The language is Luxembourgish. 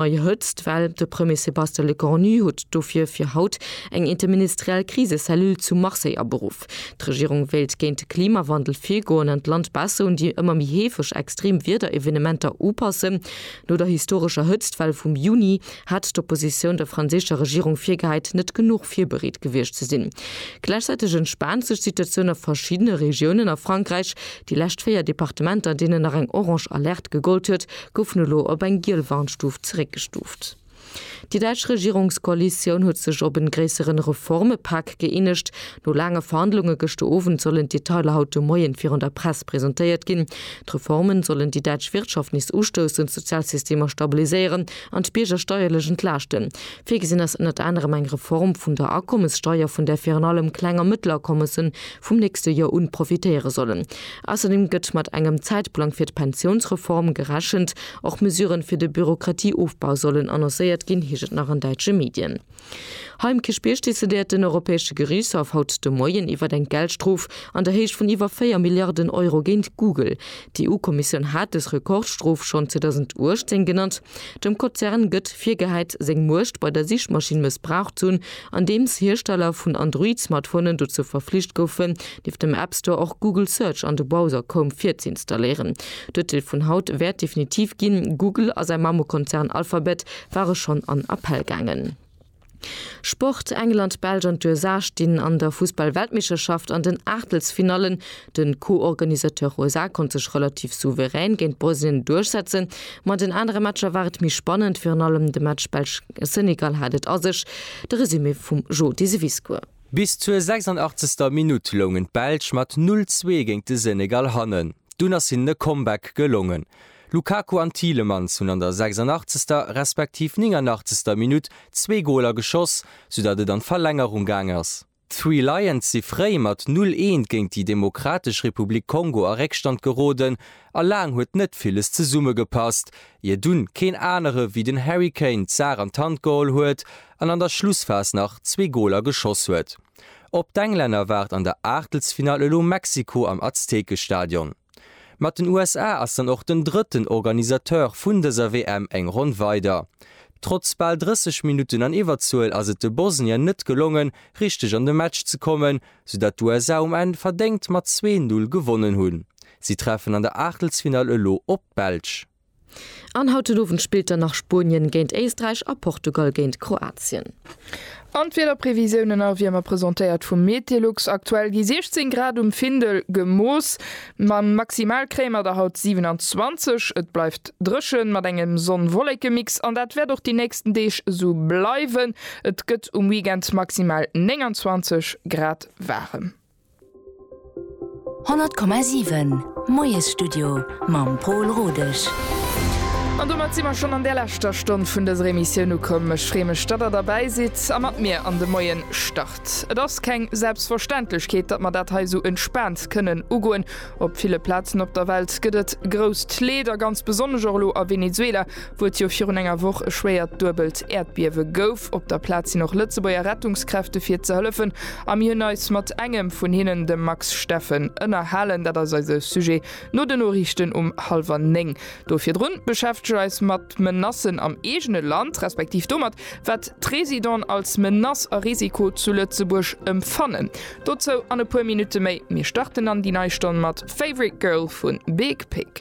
Nei Hëtzt, well de Premier Sébastien Lecornu huet dofir fir haut eng interministeriell Krisecellule zu Marseille aberuff. D'Regierung wéilt géint de Klimawandel virgoen an d'Land besser un déi ëmmer méi heefeg extrem Wiederevenementer upassen. No der historescher Hëtztwell vum Juni hat d'Oppositioun der franséischer Regierung virgehäit, net genuch virbereet gewiescht ze sinn. Gläichzäiteg entspaant sech d'Situatioun a verschiddene Regiounen a Frankräich. Déi lescht véier Departementer, deenen nach eng orange Alerte gegollt huet, goufen elo op eng giel Warnstuf zeréckgestuft. Déi däitsch Regierungskoalitioun huet sech op en gréisseren Reformepak gëeenegt. No laange Verhandlunge gëschter Owend sollen d'Detailer haut de Moien virun der Press presentéiert ginn. D'Reformen sollen déi däitsch Wirtschaft nees ustoussen, d'Sozialsystemer stabiliséieren an d'Bierger steierlech entlaaschten. Virgesinn ass ënnert anerem eng Reform vun der Akommessteier, vun där virun allem Kleng a Mëttelakommessen vum nächste Joer un profitéiere sollen. Ausserdem gëtt mat engem Zäitplang fir d'Pensiounsreform gerechent. Och Mesuren fir de Bürokratieofbau sollen annoncéiert ginn, heescht et nach an däitsche Medien. Hei um Kierchbierg decidéiert den Europäesche Geriichtshaff haut de Moien iwwert eng Geldstrof an der Héicht vun iwwer 4 Milliarden Euro géint Google. D'EU-Kommissioun hat dës Rekordstrof schonn 2018 genannt. Dem Kozern gëtt virgehäit, seng Muecht bei der Sichmaschinn mëssbraucht ze hunn, andeems Hiersteller vun Android-Smartphonen dozou verflicht goufen, nieft dem App Store och Google Search an de Browser Chrome virzeinstalléieren. D'Urteel vun haut wäert definitiv ginn. Google a säi Mamukonzern Alphabet ware schonn an Appell gaangen. Sport, England, Belsch an d'USA stinn an der Fussball-Weltmeeschterschaft an den Aachtelsfinallen. De Co-Organisateur USA konnt sech relativ souverän géint Bosnien duerchsetzen. Ma den anere Matcher war et méi spannend, virun allem de Match Belsch-Senegal hat et a sech. De Resumé vum Jo Deseviscourt. Bis zur 86. Minutt loungen d'Belsch mat 0, 2 géint de Senegal hannen. Dunn ass hinnen e Comeback gelongen. Lukaku an Tielemans hunn an der 86. respektiv 89. Minutt zwee Goler geschoss, soudatt et an d'Verlängerung gaang ass. D'Three Lions si fréi mat 0, 1 géint déi Demokratesch Republik Kongo a Réckstand geroden a laang huet net villes zesummegepasst, ier dunn keen anere wéi den Harry Kane d'Saach an d'Hand geholl huet an an der Schlussphas nach zwee Goler geschoss huet. Op d'Englänner waart an der Aachtelsfinall elo Mexiko am Aztekestadion. Mat den USA ass dann och den drëtten Organisateur vun dëser WM eng Ronn weider. Trotz bal 30 Minutten an Iwwerzuel ass et de Bosnier net gelongen, richteg an de Match ze kommen, soudatt d'USA um Enn verdéngt mat 2, 0 gewonnen hunn. Si treffen an der Aachtelsfinall elo op d'Belsch. An haut den Owend spillt dann nach Spuenien géint Éisträich a Portugal géint Kroatien. An d'Wiederprevisiounen a Wiermer presentéiert vum Metelux. Aktuell gi 16 Grad um Findel gemooss, ma maximal kréie mer der haut 27. Et bleift dréchen mat engem Sonn-Wollekemix an dat wäert och déi nächsten Deeg esou bleiwen. Et gëtt um Weekend maximal 29 Grad waarem. 100,7 Moiesstudio mam Pol Rodesch. An domat si mer schonn an där leschter Stonn vun dëser Emissioun ukomm. Ech freeë mech, datt der derbäi sidd a mat mir an de Moien start. Et ass keng Selbstverständlechkeet, datt mer dat hei esou entspaant kënnen ugoen. Op ville Plazen op der Welt gëtt et grousst Leed a ganz besonnesch och elo a Venezuela, wou et jo virun enger Woch e schwéiert duebelt Äerdbiewe gouf. Op der Plaz sinn och Lëtzebuerger Rettungskräfte fir ze hëllefen a mir hunn eis mat engem vun hinnen, dem Max Steffen, ënnerhalen. Dat ass eise Sujet no den Noriichten um hallwer néng. Do virdrun beschäftege eis mat Menacen am eegene Land, respektiv domat, wat d'Residenten als Menace a Risiko zu Lëtzebuerg emfannen. Dozou an e puer Minutte méi. Mir starten an déi nei Stonn mat Favorite Girl vu Big Pig.